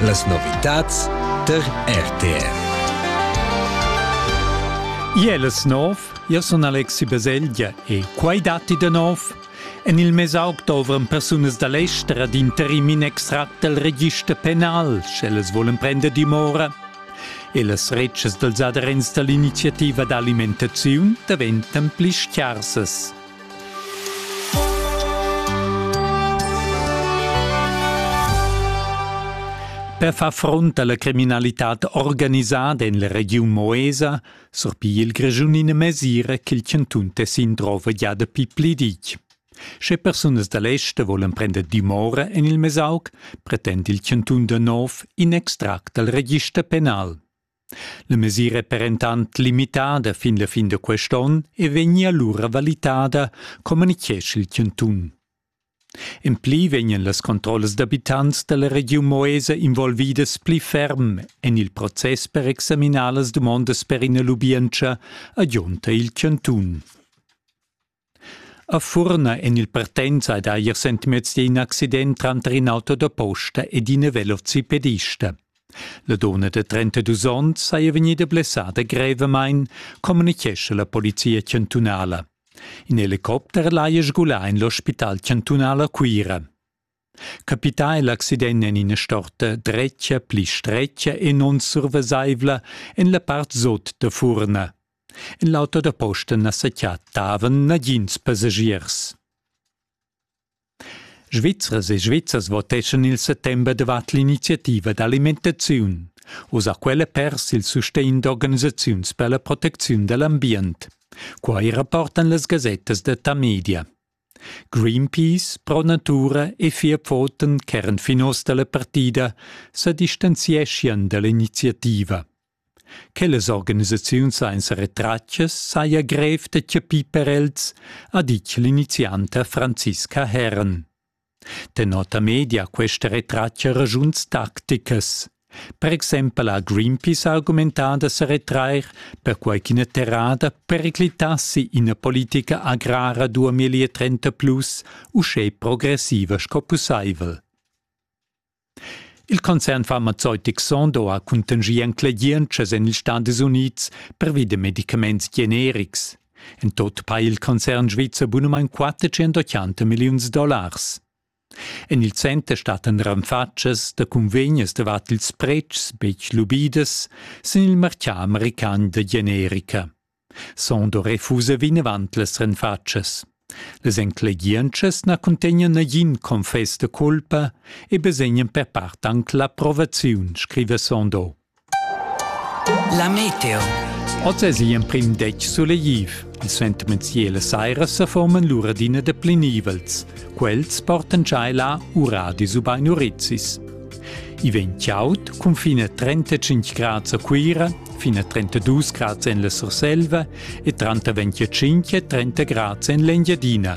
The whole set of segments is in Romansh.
Las novitads tar RTR. Iel es nov, io sun Alexi Baselgia e quai datti da nov. En il mesaug dovran persunas da l'ester ad interim in extract dal register penal, sch'ellas volen prender dimora. E las retschas dals aderents da l'iniziativa d'alimentaziun daventan pli scharsas. Per far front alla criminalitad organisada en la regiun Moesa surpigl il Grischun ina mesira ch'il chantun Tessin drova gia dapi pli ditg. Sche persunas da l'ester volan prender dimora en il Mesauc, pretend il chantun da nov in extract dal register penal. La mesira è perentant limitada fin la fin da quest'onn e vegnia lura valitada, communitgescha il chantun. En pli vegnan las controllas d'abitants da la regiun Moesa involvidas pli ferm en il process per examinar las dumondas per ina lubientscha, agiunta il chantun. A Furna en il Partenza ha dà ier sentimezdi in accident tranter in auto da posta ed ina velocipedista. La donna da 32 onns saja vegnida blessada grevamain, communitgescha la polizia chantunala. In helicopter l'haja sgulà en l'ospital chantunal a Cuira. Capità è l'accident en ina storta dretga pli stretga e non survesaivla en la part sot da furna. En l'auto da posta na sa chattavan nagins passagiers. Svizzers e Svizzers voteschan il settember davart l'iniziativa d'alimentaziun. Uss ha quella pers il sustegn d'organisaziuns per la protecziun da l'ambient. Quai rapportan las gasettas da Tamedia. Greenpeace pro natura e fia pfoten ch'eran finos dalla partida sa distanzieschian dall'iniziativa. Quellas organisaziuns sainza retratgas saja grev da chapir per els, ha ditg l'inizianta Franziska Herren. Denota media questa retratga ragiuns tacticas. Per exempel ha Greenpeace argumentà da sa retrair, perquai ch'ina terrada periclitassi ina politica agrara 2030 plus uschè progressiva sco pussaivel. Il concern farmazeutic Sondo ha cuntanschì enclegientschas en ils Stadis Unids pervi da medicaments generics. En tot ha il concern svizzer bunamain 480 milliuns dollars. En il center stattan ranfatschas da cunvegnas davart ils pretschs betg lubidas sin il martgà american da generica. Sondo refusa vinavant las ranfatschas. Las enclegientschas na cuntegnan nagin confess da culpa e basegnan per part anc l'approvaziun, scriva Sondo. La meteo. Oz es igl emprim detg sulegliv. Il sentiment ciel e saira seforman lur adina de plenivels. Quels portan giai là uradis ubain urizis. I vegn chaud cun fin a 35 grads a Cuira, fin a 32 grads en la Surselva e 30 25 30 grads en l'Engiadina,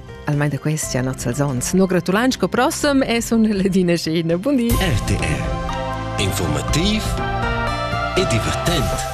almain da questi a nozzas ons. No gratulants co prossem e sun Ledina Scena. Bundi! RTR. Informativ e divertent.